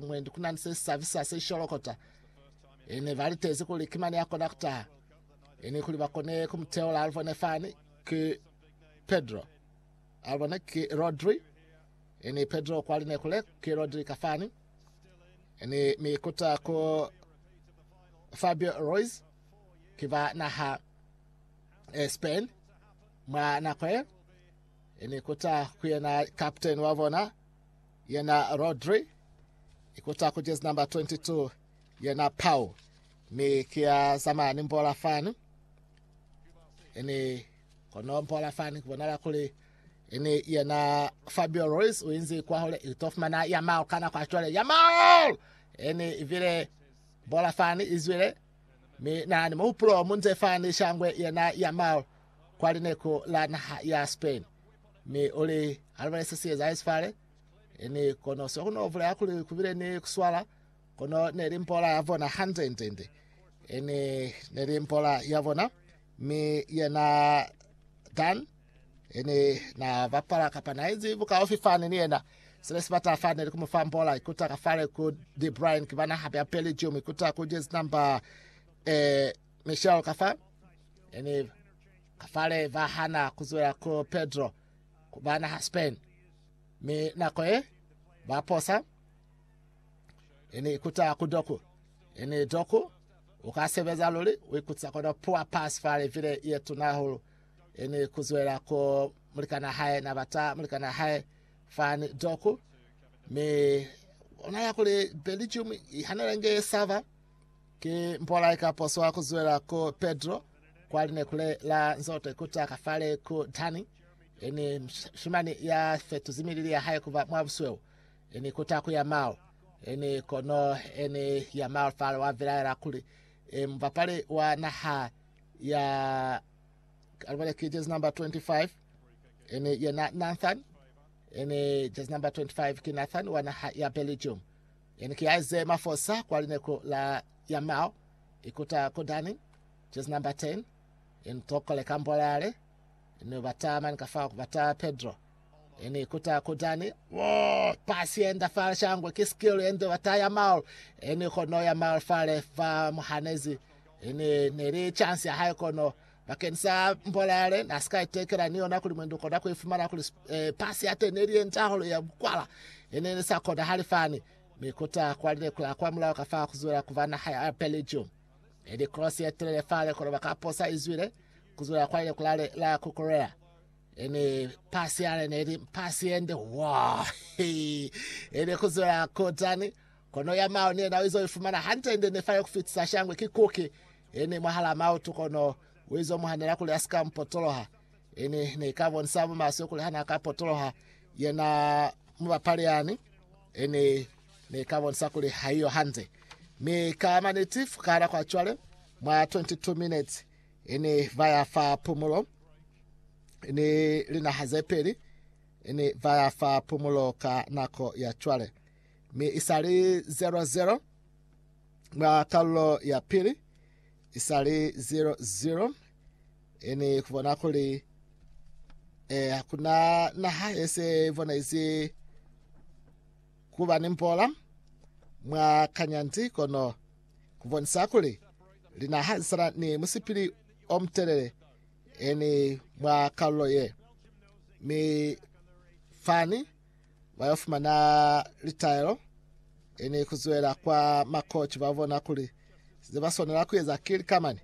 Mwendi ku na ni se si sabisa se sholokota. I ne ba litezi kuli ki mane ya kona ku taha. I ni kuli ba kone ku mu teula. A lu bone fani, ki Pedro. A lu bone, ki Rodri. I ni Pedro kwa line kule, ki Rodri ka fani. I ni mi ikuta ku Fabio Ruiz, ki ba naha e Spain. Mwa nako ye, i ni ikuta ku yena kapteni wa bona. Yena Rodri, ikuta ku jezi number 22, yena Pau, mi ki ya zamaya ni mbola fani. Ini kono mbola fani kubonala kuli ini yena Fabio Ruiz uinzi kwa hole itofumana Yamal kana kwa chwale Yamal ini ivile bola fani izwile mi na ni muhupulo munze fani shangwe yena Yamal kwa lineku la naha ya Spain Mi uli, Alibone se sieza hesi fale. Ni kono se kuno vuleha kuli kubile ni kuswala, kono neli mpola ya bona hande nde nde. Ni neli mpola ya bona, mi yena Dan ni na bapala kapa na izi bukaufi fani ni yena. Sile sibata fa neli kumufa mpola ikuta ka fale ku De Bruyne kibana hape ya Belgium ikuta ku jezi namba eh Michelle ka fa e ni ka fale va hana ku zwela ku Pedro ku ba naha Spain, mi nako ye ba posa e ni ikuta ku Doku e ni Doku u ka sebeza luli u ikutisa kono pua pasi fale vile ye tuna hahulu e ni ku zwela ku mulikana hae na bata mulikana hae fani Doku mi ona ya kuli Belgium i hanela nge sava Ki mpolai ka poso wa ku zwela ku Pedro kwa linekule la Nzote kuta ka fale ku Dani, ini shimani ya fetuzi milili ya hae kuba mwa busweu, ini kuta ku Yamal, ini kono ini Yamal fale wa vilaela kuli e mubapali wa naha ya alibole ki jezi number 25 ini yena Nathan ini jezi number 25 ki Nathan wa naha ya Belgium Yani ki yaize mafosa kwa lineku la Yamao, ikuta ku Dani, Jezi namba 10, yani tokole kambolale, yani bata mani kafao kubata Pedro, yani ikuta ku Dani, wo, pasi yenda fale shangwe ki skill yende bata Yamao, yani kono Yamao fale fa muhanezi, yani neli chance ya hae kono Bakeni sa mbola yale, na sika itekela ni yona kuli mwendi ukona kuifumana kuli e, pasi ya teni neli yenca hahulu ya bukwala yene ili sa kona hali fani, mi kuta kwalile kula kwa mulao ka fa kuzwela kuba naha ya Belgium. Eli cross ye telele fale kono baka posa izwile kuzwela kwalile kula le la kukulela ene pasi yale neli pasi yende wa ene kuzwela kutani kono ya mao ni yena izo ifumana hante ende nefale kufitisa shangwe kikuki Ini mwahalaa mautu kono uizo muhanela kuli asika mupotoloha. Ini neika bonisa mumaswe kuli hana ka potoloha yena mubapali yani, ini neika bonisa kuli haiyo hande. Mi ka maniti fukala kwa cwale mwa 22 minutes ini vaya fa pumulo ini linaha zepeli ini vaya fa pumulo ka nako ya cwale mi isali 00 Mwa kalulo ya pili, isali 0-0, eni kubona kuli eh, hakuna naha yese ivonezi kuba ni mbola mwa kanyanzi, kono kubonisa kuli linaha zisana ni musipili omtelele eni mwa kalulo ye. Mi fani ba yo fumana litaelo, i ni ku zwela kwa makoci ba bona kuli ze ba swanela ku eza ki lika mani.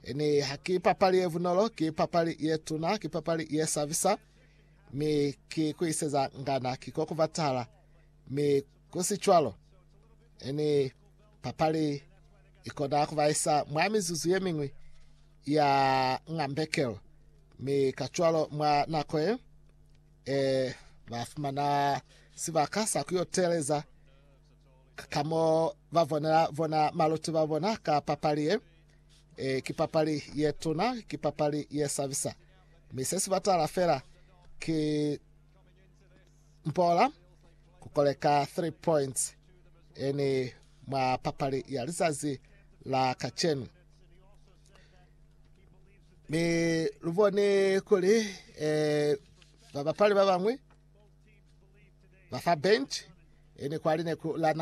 I ni ha ki papali ye bunolo, ki papali ye tuna, ki papali ye sabisa, mi ki ku iseza ngana ki ko ku batahala. Mi ku si cwalo, i ni papali i kona ku ba isa mwa mizuzu ye miñwi ya ngambekelo, mi kacwalo mwa nako ye Ee, ba fumana sibaka sa ku yo teeleza ka mo ba bonela bona maluti ba bona ka papali ye. Ee, ki papali ye tuna, ki papali ye sabisa. Mi se si batala fela ki mpola ku koleka 3 points eni mwa papali ya lizazi la kacenu. mi lu bone kuli eh, babapali ba bang'we ba fa bench ene kwali ne ku lana